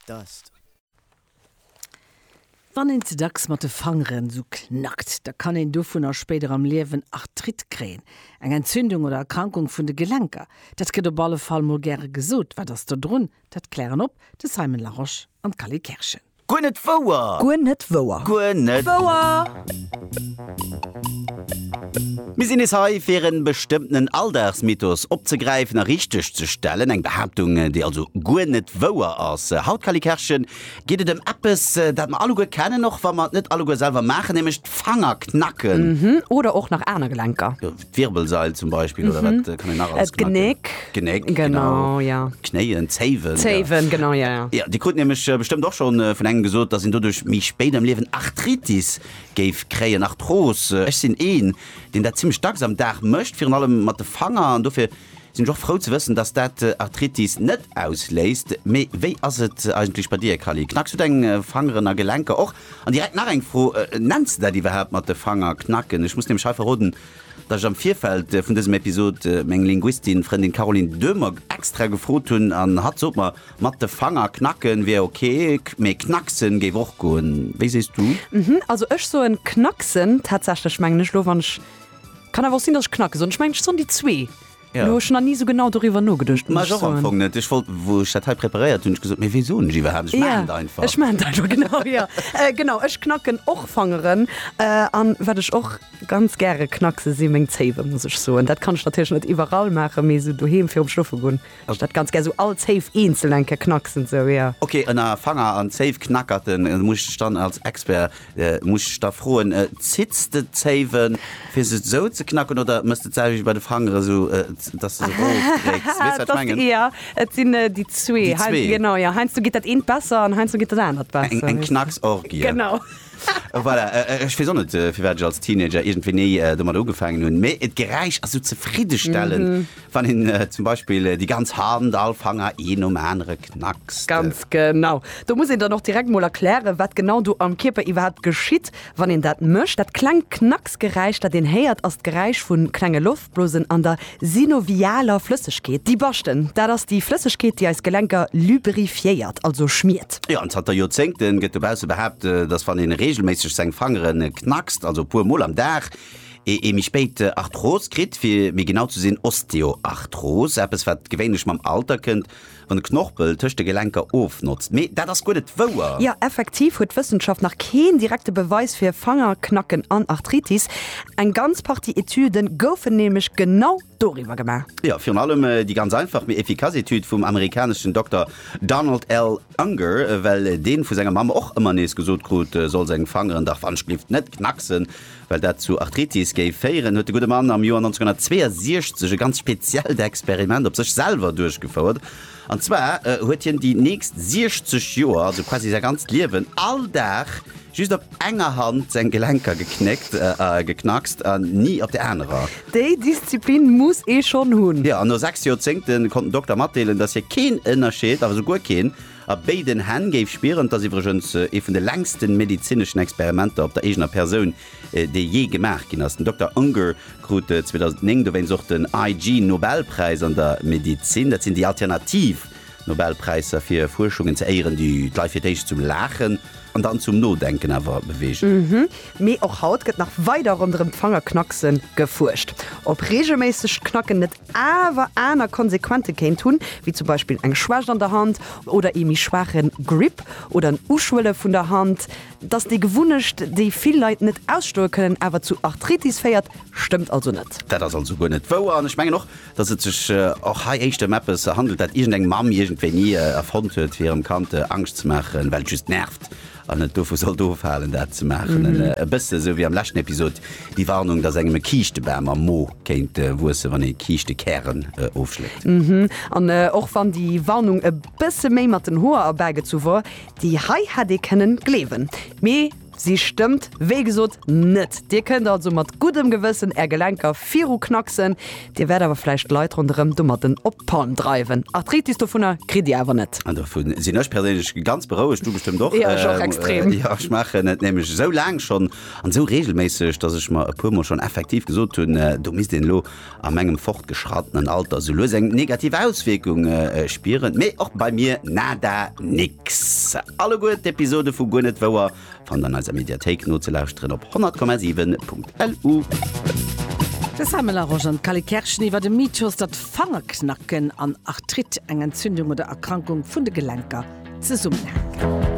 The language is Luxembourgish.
Dust. Wann een ze dacks mat de Fangeren esou knackt, da kann een dovunner spéider am Liewen Arthrite kréien, eng Entzündung oder Erkrankung vun de Gelenker. Dat gëtt op alle Fall mol gäre gesot. Wat ass do drun? Dat klären op de Simon Larosche an d'Cally Kerschen. Guer net wouer! Guer net wouer! Guer net wouer! Mir sinn nees hei, fir e bestëmmtenen Alldagsmythos opzegräifen a richteg ze stellen. Eng Behaaptung, déi also guer net wouer ass. Haut, Kally Kerschen, geet et ëm eppes, dat mer alleguer kennen, och wa mer et net alleguer selwer maachen, nämlech d'Fanger knacken. Oder och nach aner Gelenker. D'Wirbelsail zum Beispill oder wat kann een nach alles gemaach ginn? D'Genéck. Genéck, genau. Genau, ja. Knéien, Zéiwen. ja. Zéiwen, genau, ja, ja. Ja, Dir krut nämlech äh, bestëmmt och schonn äh, vun engem gesot, dass een doduerch méi spéit am Liewen Arthritis géif kréien, Arthros. Äh, Ech sinn een, deen dat zimmlech dacks am Dag mécht, virun allem mat de Fanger an dofir Sinn ech och frou ze wëssen, dass dat Arthritis net ausléist. Mee wéi ass et eigentlech bei dir, Cally? Knacks du deng Fangeren a Gelenker och? An direkt nach eng Fro, Nenns de dat iwwerhaapt mat de Fanger knacken? Ech muss nämlech hei verroden, dass ech am Virfeld vun dësem Episod meng Linguistin, Frëndin Caroline Döhmer extra gefrot hunn an hatt sot mer, mat de Fanger knacke wier ok, mee knacksen géif och goen. Wéi sees du? Also ech soen knacksen tatsächlech, mengen ech elo, wann ech Kann awer och sinn dass ech knacke soen, ech mengen ech soen déi zwee. Elo hu ech nach ni sou genau doriwwer nogeduecht, muss ech soen. Ech wollt, wou ech dat hei preparéiert hunn, ech gesot, mee wéi soen ech iwwerhaapt, ech maachen et einfach. Ech maachen et einfach, genau, jo. Genau, ech knacken och Fangeren. An wat ech och ganz gäre knackse si meng Zéiwe, muss ech soen. Dat kann ech natierlech net iwwerall maachen, mee sou doheem virum Schlofe goen. Ech dat ganz gär sou all Zéif eenzeln eng Kéier knacksen sou jo. Ok ënner Fanger an Zéif knackerten muss ech dann als Expert muss ech da froen zitts de d'Zéiwen fir se sou ze knacken oder mëss de d'selwecht bei de Fangeren sou dass de se rof drécks? Weess wat ech mengen? Jo et sinn déi zwee. Déi zwee? Genau jo heiansdo geet dat eent besser an heiansdo geet dat anert besser. Eng Knacksorgie. Genau. Voilà ech weess och net firwat ech als Teenager iergendwéi ni domadder ugefaangen hunn mee d'Geräisch ass sou zefriddestellend. Wann een zum Beispill déi ganz Hand, all Fanger een nom anere knackst. Ganz genau. Do muss een dann och direkt mol erklären, wat genau do am Kierper iwwerhaapt geschitt, wann een dat mécht. Dat klengt Knacksgeräisch, dat een héiert, ass d'Geräisch vu klenge Loftblosen an der synovialer Flëssegkeet. Déi Baschten, dat ass déi Flëssegkeet, déi eis Gelenker lubrifiéiert, also schmiert. Jo, an zanter Joerzéngte gëtt dobausse behaapt, dass wann een reegelméisseg seng Fangere knackst, also e puer mol am Dag, ee ee méi spéit Arthros kritt, fir méi genau ze sinn Osteoarthros, eppes wat gewéinlech mam Alter kënnt, wann de Knorpel tëscht de Gelenker ofnotzt. Mee dat ass guer net wouer! Jo, effektiv huet d'Wëssenschaft nach keen direkte Beweis fir Fangerknacken an Arthritis. Eng ganz Partie Etüde goufen nämlech genau doriwwer gemaach. Jo, virun allem déi ganz einfach mee efficace Etüd vum amerikaneschen Dokter Donald L. Unger, well dee vu senger Mamm och ëmmer nees gesot krut, e soll seng Fangeren dach wann Schlift net knacksen. Well dat zu Arthritis géif féieren, huet de gudde Mann am Joer 1962 e ganz speziellt Experiment op sech selwer duerchgefouert. An zwar huet hien déi nächst 60 Joer, also quasi säi ganzt Liewen, all Dag just op enger Hand seng Gelenker geknéckt, geknackst, an ni op der anerer. Déi Disziplin muss ee schonn hunn! Jo, an no 6 Joerzéngte konnt den Dokter matdeelen, dass hie keen Ënnerscheed, awer esou guer keen, A béiden Hänn géif spieren. Et ass iwwregens ee vun de längsten medezineschen Experimenter op der eegener Persoun, dee jee gemaach ginn ass. Den Dokter Unger krut 2009 dowéinst och den IG Nobelpräis an der Medezin. Dat sinn déi alternativ Nobelpräisser fir Fuerschungen ze éieren, déi d'Leit fir d'éischt zum Laachen an dann zum Nodenken awer beweegen. Mee och haut gëtt nach weider ronderëm d'Fangerknackse gefuerscht. Ob reegelméissegt Knacken net awer aner Konsequente kéint hunn, wéi zum Beispill eng Schwächt an der Hand oder ee méi schwaache Grip oder en Uschwëlle vun der Hand. Dass déi Gewunnecht, déi vill Leit net ausstoe kënnen, awer zu Arthritis féiert, stëmmt also net. Dat ass also guer net wouer. An ech mengen och, dass et sech och hei éischter ëm eppes handelt, dat iergendeng Mamm iergendwéini erfonnt huet, fir hirem Kand Angscht ze maachen, well et just nervt. An et dovu sollt ofhalen, dat ze maachen. E bësse esou wéi am leschten Episod déi Warnung, dass engem e Kiischtebam am Mo kéint wuessen, wann ee Kiischtekären ofschléckt. An och wann déi Warnung e bësse méi mat den Hoer erbägezu wor, déi hei hätt ee kënnen gleewen. Mee si stëmmt wéi gesot net. Dir kënnt also mat guddem Gewëssen är Gelenker viruknacksen. Dir wäert awer vläicht d'Leit ronderëm domatten op d'Palm dreiwen. Arthritis dovunner kritt Dir awer net. An dovu sinn ech perséinlech ganz berouegt, du bestëmmt och. Jo, ech och extrem. Jo, ech maachen et nämlech esou laang schonn an esou reegelméisseg, dass ech mer e puer Mol schonn effektiv gesot hunn, do misst een elo a mengem fortgeschrattenen Alter esou lues eng negativ Auswierkung spieren. Mee och bei mir nada, nix. Alleguer d'Episode vu Guer net wouer Fannt an eiser Mediathéik nozelauschteren op 100,7.lu. De Sam Melange an d'Cally Kerschen iwwert e Mythos, datt Fangerknacken an Arthrite, eng Entzündung oder Erkrankung vun de Gelenker, zesummenhänken.